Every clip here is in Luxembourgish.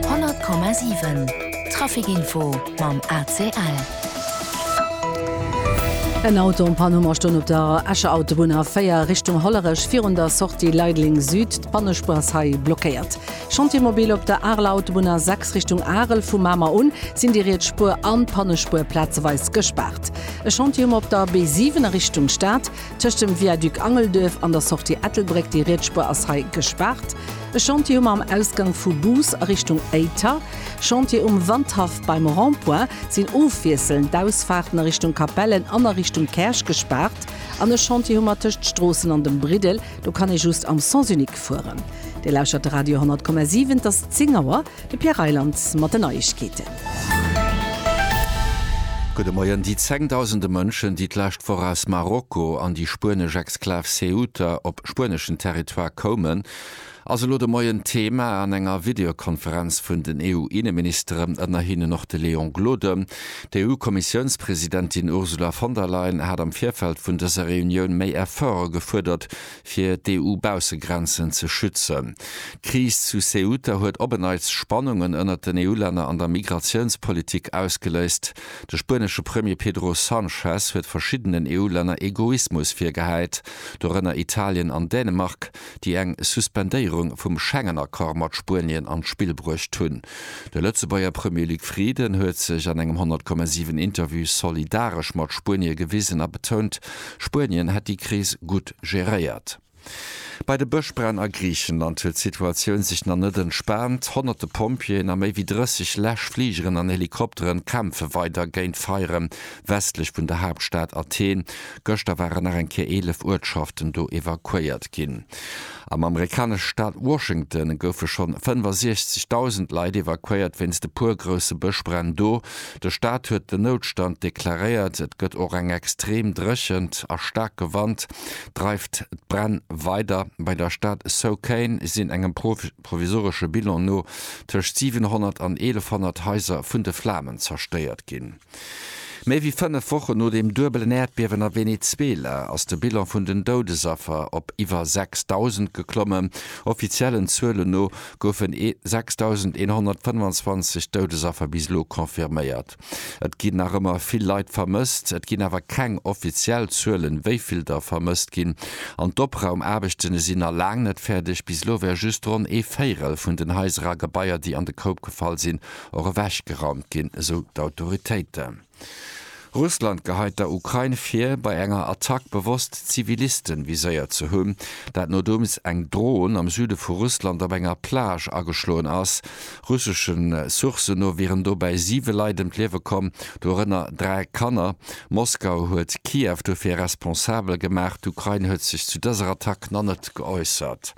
100,7 Traficinfo mam ACL. En Auto um Pann hu mer stoen op der Escher Autobunn a 4 Richtung Hollerech virun der Sortie Leideleng Süd. D'Pannespur ass hei blockéiert. Chantier mobile op der Areler Autobunn a 6 Richtung Arel. Vu Mamer un sinn déi riets Spur an d'Pannespur plazeweis gespaart. E Chantier hu mer op der B7 a Richtung Stad tëscht dem Viaduc Angelduerf an der Sortie Ettelbréck. Déi riets Spur ass hei gespaart. E Chantier um am Ausgang vu Bous a Richtung Éiter, Chantier um Wandhaff beim Rond-point sinn ofwiesselnd d'Ausfaarten a Richtung Capellen an a Richtung Käerch gespaart an e Chantier hu mer tëscht Stroossen an dem Briddel, do kann ee just am Sens unique fueren. Dir lauschtert de Radio 100,7, et ass 10 Auer, de Pierre Reyland mat den Neiegkeeten. Gudde Moien. Déi zengdausende Mënschen, déi d'lescht Woch aus Marokko an déi spuenesch Exklav Ceuta op spueneschen Territoire koumen, ass elo de Moien Thema an enger Videokonferenz vun den EU-Inneministeren, ënner hinnen och de Léon Gloden. D'EU-Kommissiounspresidentin Ursula von der Leyen hat am Virfeld vun dëser Reunioun méi Efforte gefuerdert, fir d'EU-Baussegrenzen ze schützen. D'Kris zu Ceuta huet op en Neits Spannungen ënnert den EU-Länner an der Migratiounspolitik ausgeléist. De spuenesche Premier Pedro Sanchez huet verschiddenen EU-Länner Egoismus virgehäit, dorënner Italien an Dänemark. déi eng Suspendéierung vum Schengen-Accord mat Spuenien an d'Spill bruecht hunn. De Lëtzebuerger Premier Luc Frieden huet sech an engem 100,7 Interview solidaresch mat Spuenie gewisen a betount, Spuenien hätt déi Kris gutt geréiert. Bei de Bëschbränn a Griichenland huet d'Situatioun sech nach net entspaant. Honnerte Pompjeeën a méi wéi 30 Läschfligeren an Helikopteren kämpfe weider géint d'Feiere westlech vun der Haaptstad Athen, Gëschter waren nach eng Kéier 11 Uertschaften do evakuéiert ginn. Am amerikanesche Staat Washington goufe schonn 65.000 Leit evakuéiert wéinst e puer grousse Bëschbränn do. De Staat huet den Noutstand deklaréiert. Et gëtt och eng extreem Dréchent a staarke Wand dreift d'Bränn weider. Bei der Stad Souquén sinn engem provisoresche Bilan no tëscht 700 an 1.100 Haiser vun de Flamen zerstéiert ginn. Méi wéi fënnef Wochen no dem duebelen Äerdbiewen a Venezuela ass de Bilan vun den Doudesaffer op iwwer 6.000 geklommen. Offiziellen Zuelen no goufen 6.125 Doudesaffer bis elo confirméiert. Et ginn nach ëmmer vill Leit vermësst. Et ginn awer keng offiziell Zuelen, wéi vill der vermësst ginn. An d'Opraumaarbechtene sinn na laang net fäerdeg. Bis elo wär just ronn ee Véirel vun den Haiser a Gebaier, déi an de Koup gefall sinn, och ewechgeraumt ginn, esou d'Autoritéiten. Russland geheit der Ukrain vir, bei enger Attack bewosst Zivilisten viséiert ze hunn, dat nodeems eng Dron am Süde vu Russland op enger Plage ageschloen ass. Russesche Sourcen no wieren dobäi siwe Leit ëm d'Liewe komm, dorënner dräi Kanner. Moskau huet Kiew dofir responsabel gemaach, d'Ukrain huet sech zu dëser Attack nach net geäussert.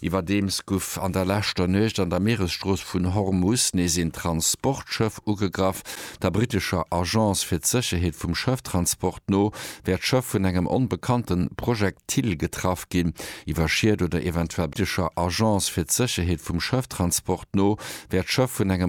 Iwwerdeems guff an der leschter Nuecht an der Mieresstrooss vun Hormus nees een Transportschëff ugegraff. Der brittescher Agence fir d'Sécherheet vum Schëfftransport no wär d'Schëff vun engem onbekannte Projektil getraff ginn. Iwwer Schied oder eventuell. Der britescher Agence fir d'Sécherheet vum Schëfftransport no wär d'Schëff vun engem.